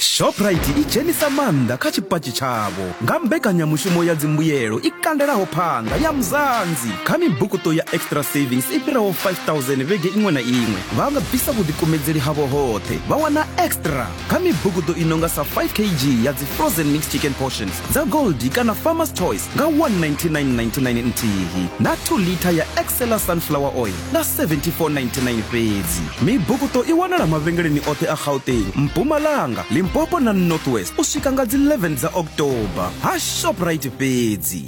shoprite i dzhenisa maanḓa kha tshipatshi tshavho nga mbekanyamushumo ya dzimbuyelo i kandelaho phanḓa ya muzanzi kha mibukuṱo ya extra savings i fhiraho 5000 vhege iṅwe na iṅwe vha nga bvisa vhuḓikumedzeli havho hoṱhe vha wana extra kha mibukuṱo i nonga sa 5 kg ya dzi frozen mixed chicken portions dza goldi kana farmers choice nga 19999 nthihi na 2 liter ya excela sunflower oil nga 7499 fhedzi mibukuṱo i wanala mavhengeleni oṱhe a gauteng mpumalanga limpopo na northwest u swika nga dzi 11 dza october ha shoprite fhedzi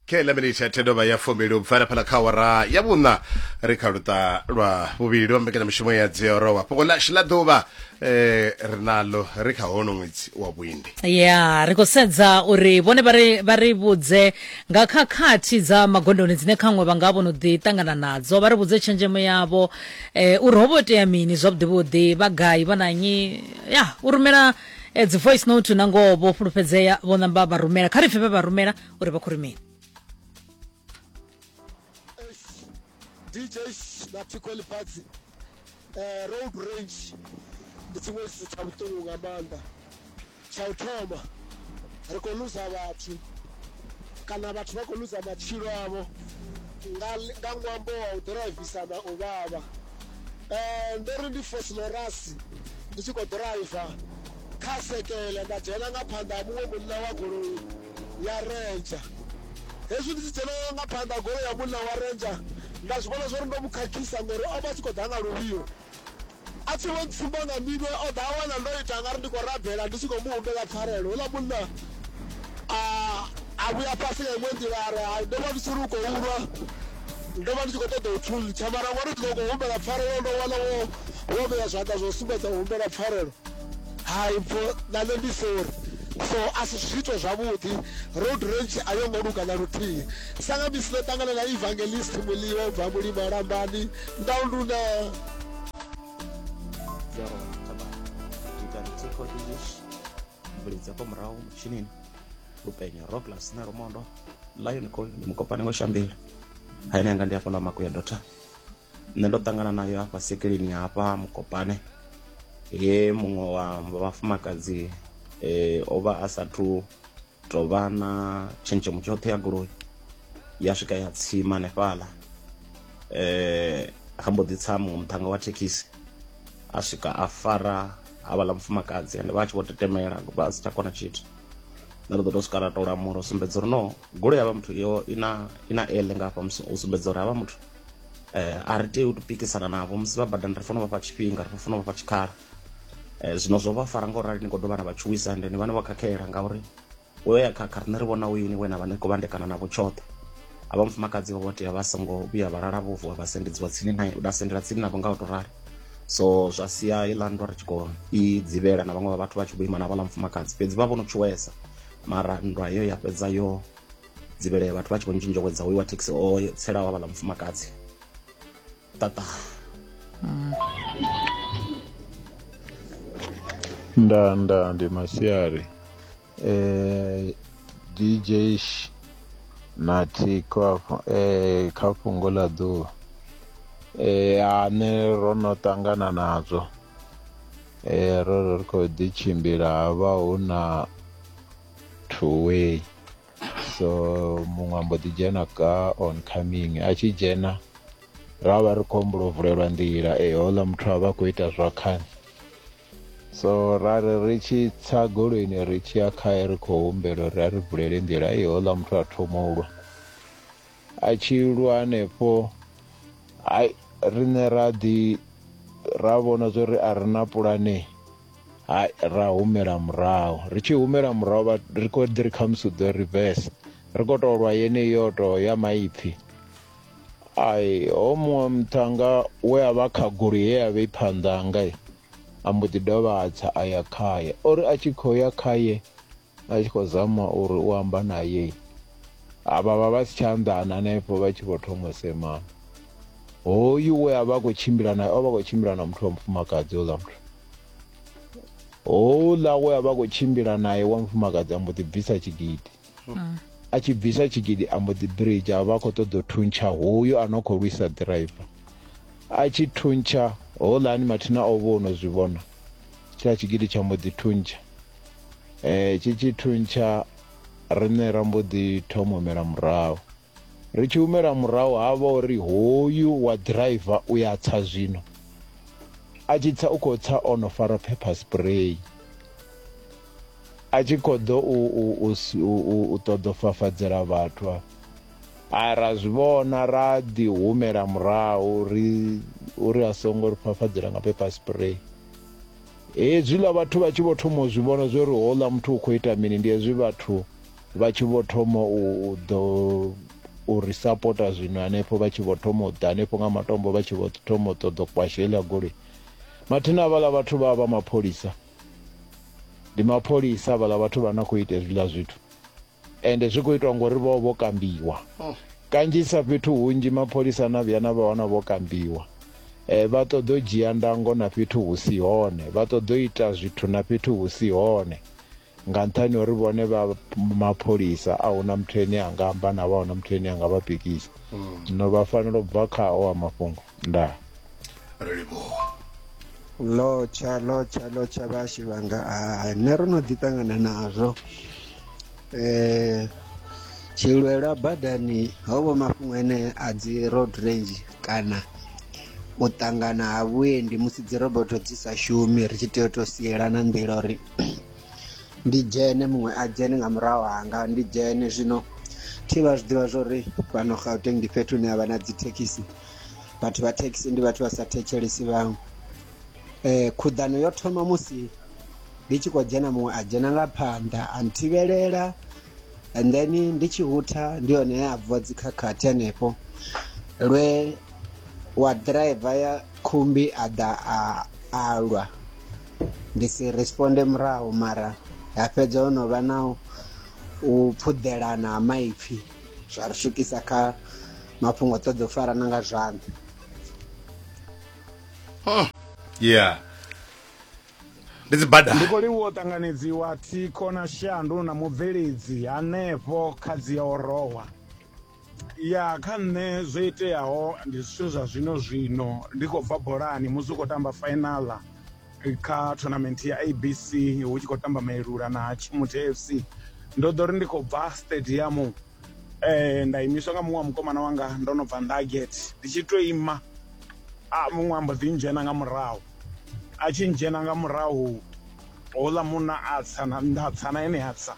kheḽa minitshi ya thedovha ya fumili u bvela phala kha wara ya vhuṋa ri kha luṱa lwa vhuvhili lwa mbekanyamushumo ya dziorowa fhungo ḽashu ḽa ḓuvha eh, ri nalo ri kha hono ṅwedzi wa vhuindi ya ri khou sedza uri vhone vha ri vhudze nga khakhathi dza magondoni dzine khaṅwe vha nga vho no ḓi ṱangana nadzo, vha ri vhudze tshenzhemo yavho eh, uri ho vho itea mini zwavhuḓivhuḓi, vha gai, vha na nnyi. Ya, u rumela eh, dzi voice note na ngoho vho fhulufhedzea, vho namba vha rumela. Kha ri pfe vhe vha rumela uri vha khou ri mini. DJ na Thikho Lifhadzi eh, road range ndi tshiṅwe tshithu tsha vhuṱungu nga maanḓa tsha u thoma ri khou luza vhathu kana vhathu vha khou luza matshilo avho nga nga ṅwambo wa u ḓirayivisa na u vhavha um ndo ri ndi fosilorasi ndi tshi khou ḓiraiva kha sekele nda dzhena nga phanḓa ha muṅwe munna wa goloi ya Ranger. Hezwi ndi tshi dzhena nga phanḓa goloi ya munna wa Ranger nda zwi vhona zwori ndo mu khakhisa ngori o vha tshi khou ḓa nga luvhilo a tshi vho ntsumba nga minwe o ḓa a wana ndo ita nga ri ndi khou rabela ndi tshi khou mu humbela pfarelo houḽa munna a a vhuya fhasi nga iṅwe nḓila a ri hai ndo vha ndi tshi ri u khou ulwa ndo vha ndi tshi khou ṱoḓa u thuntsha mara ngori ndi ḓo khou humbela pfarelo ndo wana wo wo vhea zwanḓa zwo sumbedza u humbela pfarelo hai mpho na nṋe ndi sorry so a si zwiito zwavhuḓi road range a yo ngo luga na luthihi sa nga misi ndo ṱangana na evangelist muliwa u bva mulimo lambani ndaunduna mvulidza kwa murahu mutshinini lupenyo roglas na rumondo lion col ndi mukopane wa shambila haine anga ndi hafhaḽa makuya dota nṋe ndo ṱangana nayo hafha sekeleni hafha mukopane he muṅwe wa vhafumakadzi um o vha a sathu tou vha na tshenzhemo tshoṱhe ya goloi ya swika ya tsima hanefhaḽa um ha mbo ḓi tsa muṅwe muṱhannga wa thekhisi a swika a fara havhaḽa mufumakadzi ende vha a tshi vho tetemela vha si tsha kona tshithu nṋe ndo ḓo tou swika ra tou lamula u sumbedza uri no goloi ya vha muthu yo i na i na ele nga hafha u sumbedza uri havha muthu eh, a ri tei u tupikisana navho musi vha badani ri fanela u vhafha tshifhinga ri fanela u vhafha tshikhala eh, zwino zwo vha fara nga u rali ni khou dovha na vha tshuwisa ende ni vha ni vha khakhela ngauri u yo ya khakha riṋe ri vhona u yini we na vha ni khou vhandekana navho tshoṱhe a vha mufumakadzi vho tea vha songo vhuya vha lala vho vuwa vha sendedziwa tsini nae vha sendela tsini navho nga u tou rali so zwa sia iḽa nndwa ri tshi khou i dzivhela na vhaṅwe vha vhathu vha tshi vho ima na vhaḽa mufumakadzi fhedzi vha vho no tshuwesa mara nndwa heyo ya fhedza yo dzivhele vhathu vha tshi khou ntshintsha kwedza hoyu wa thekhisi o tselaho havhala mufumakadzi tata mm. nda nda ndi masiari eh DJ na thikho afho eh kha fhungo ḽa ḓuvha eh ane ro no ṱangana nadzo eh ro ri khou ḓi tshimbila havha hu na two way so muṅwe ambo ḓi dzhena ka on coming a tshi dzhena ra vha ri khou humbula u vulelwa nḓila e houḽa muthu a vha khou ita zwa khani so ra ri ri tshi tsa goloini ri tshi ya khae ri khou humbela uri a ri vulele nḓila e houḽa muthu a thoma u lwa a tshi lwa hanefho hai riṋe ra ḓi ra vhona zwo ri a ri na pulane hai ra humela murahu ri tshi humela murahu vha ri khou ḓi ri khamusi u ḓo reverse ri khou tou lwa yeneyi yo tou ya maipfhi ai ho muṅwe muṱhanga we a vha kha goloi ye ya vha i phanḓanga a mbo ḓi dovha a tsa a ya khaye o ri a tshi khou ya khaye a tshi khou zama uri u amba naye avha vha vha si tsha anḓana hanefho vha tshi vho thoma u semana hoyu we a vha a khou tshimbila naye o vha khou tshimbila na muthu wa mufumakadzi houḽa muthu houḽa we a vha a khou tshimbila naye wa mufumakadzi a mbo ḓi bvisa tshigidi mm. a tshi bvisa tshigidi a mbo ḓi bridge a vha a khou ṱoḓa u thuntsha hoyu a no khou lwisa ḓiraiva a tshi thuntsha houḽani mathina o vha o no zwi vhona tshiḽa tshigidi tsha mbo ḓi thuntsha Eh, tshi tshi thuntsha riṋe ra mbo ḓi thoma u humela murahu ri tshi humela murahu ha vha uri hoyu wa driver u ya tsa zwino a tshi tsa u khou tsa o no fara pepper spray a tshi khou ḓo u, u, u, u, u ṱoḓa fafadzela vhathu a a ra zwi vhona ra ḓi humela murahu ri uri a songo ri fafadzela nga pepper spray Hezwiḽa vhathu vha tshi vho thoma u zwi vhona zwo ri houḽa muthu u khou ita mini, ndi hezwi vhathu vha tshi vho thoma u ḓo u ri sapota zwino hanefho vha tshi vho thoma u ḓa hanefho nga matombo vha tshi vho thoma u ṱoḓa u kwasha heiḽa goloi mathina avhaḽa vhathu vha vha mapholisa ndi mapholisa avhaḽa vhathu vha na khou ita hezwiḽa zwithu ende zwi khou itwa ngori vho vho kambiwa oh. kanzhisa fhethu hunzhi mapholisa na vhuya na vha wana vho kambiwa eh, vha ṱoḓa u dzhia ndango na fhethu hu si hone vha ṱoḓa u ita zwithu na fhethu hu si hone nga nṱhani uri vhone vha mapholisa a huna muthu ene a nga amba na vha huna muthu ene a nga vha pikisa hmm. zwino vha fanela u bva khao a mafhungo nda ri livhuwa lotsha lotsha lotsha vhashi vhanga a nṋe ro no ḓi ṱangana nazwo um tshilwela badani ho vho mafhungo ene a dzi road range kana u ṱangana ha vhuendi musi dzi roboto dzi sa shumi ri tshi tea u to sielana nḓila uri ndi dzhene muṅwe a dzhene nga murahu hanga ndi dzhene zwino thi vha zwi ḓivha zwori fhano gauteng ndi fhethu hune havha na dzi thekhisi vhathu vha thekhisi ndi vhathu vha sa thetshelesi vhaṅwe um khuḓano yo thoma musi ndi tshi khou dzhena muṅwe a dzhena nga phanḓa a nthivhelela and then ndi tshi hutha ndi hone he a bvuwa dzikhakhathi hanefho lwe wa driver ya khumbi a ḓa a alwa ndi si responde murahu mara ha fhedza ho no vha na u phuḓelana ha maipfhi zwa ri swikisa kha mafhungo ṱoḓa u farana nga zwanḓa hmm. yeah ndi dzibada ndi khou livhuwa u ṱanganedziwa thikho na shandu na mubveledzi hanefho kha dzi ya orowa Ya, kha nṋe zwo iteaho ndi zwithu zwa zwino zwino ndi khou bva bolani musi u khou tamba final kha tournament ya ABC hu tshi khou tamba Mailula na Tshimuthe FC ndo ḓo ri ndi khou bva stadium eh nda imiswa nga muṅwe wa mukomana wanga ndo no bva Nugget ndi tshi to ima a muṅwe ambo ḓi ndzhena nga murahu a tshi ndzhena nga murahu houḽa munna a tsa na nda tsa na ene a tsa.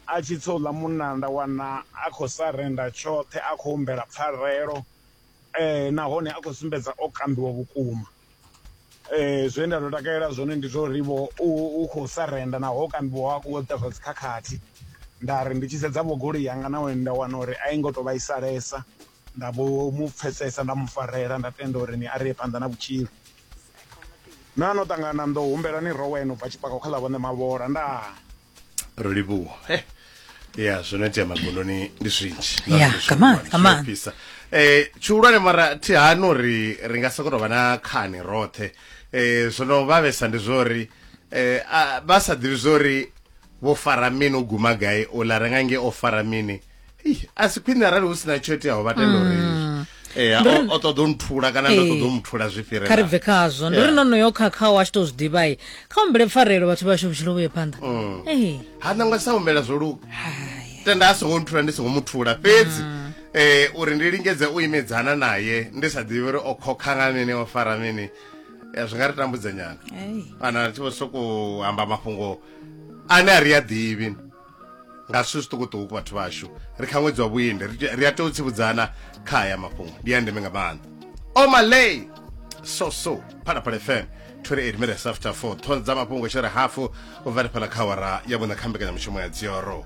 A tshi tsouḽa munna nda wana a khou sarenda tshoṱhe, a khou humbela pfarelo nahone a khou sumbedza o kambiwa vhukuma. Zwe nda tou takalela zwone ndi zwa uri-vho u khou sarenda naho o kambiwa ha khou ita zwa dzi khakhathi. Nda ri ndi tshi sedza-vho goloi yanga na hone nda wana uri a i ngo tou vhaisalesa, nda vho mu pfhesesa nda mu farela nda tenda uri ni a ri ye phanḓa na vhutshilo. Na no ṱangana na nḓou humbelani rowe no bva tshipakwa kha ḽa vho Ṋemavhola. Ndaa. ro livhuwa eh ya zwo no itea magondoni ndi zwinji Yeah, come on, come on. pisa eh tshihulwane mara thi hani uri ri nga sokoto vha na khani roṱhe eh zwo no vhavhesa ndi zwori eh a- vha sa ḓivhi zwori vho fara mini u guma gai ola renga nge o fara mini a si khwine arali hu si na tsho iteaho vha tenda uri mm. eh, o ṱoḓa u nthula kana ndo ṱoḓa u muthula zwi fhirela kha ri bve khazwo ndi ri no no yo khakhaho a tshi tou zwi ḓivhai kha umbele pfarelo vhathu vhashu vhutshilo vhuye phanḓa mm. eh. ha nangwe sa humbela zwo luga tenda a songo nthula ndi songo muthula fhedzi mm. eh uri ndi lingedze u imedzana naye ndi sa ḓivhi uri o khokha nga mini o fara mini eh, zwi nga ri tambudza nyana kana ri tshi vho sokou amba mafhungo ane a ri a ḓivhi nga zwithu zwiṱukuṱuku vhathu vhashu ri kha ṅwedzi wa vhuendi ri a tea u tsivudzana kha aya mafhungo ndi ya ndeme nga maanḓa omaley so so phalaphala fm 28 minutes after 4 thonza mafhungo tshere hafu u vha ri phala kha awara ya vhuṋa kha mbekanyamushumo ya dzioro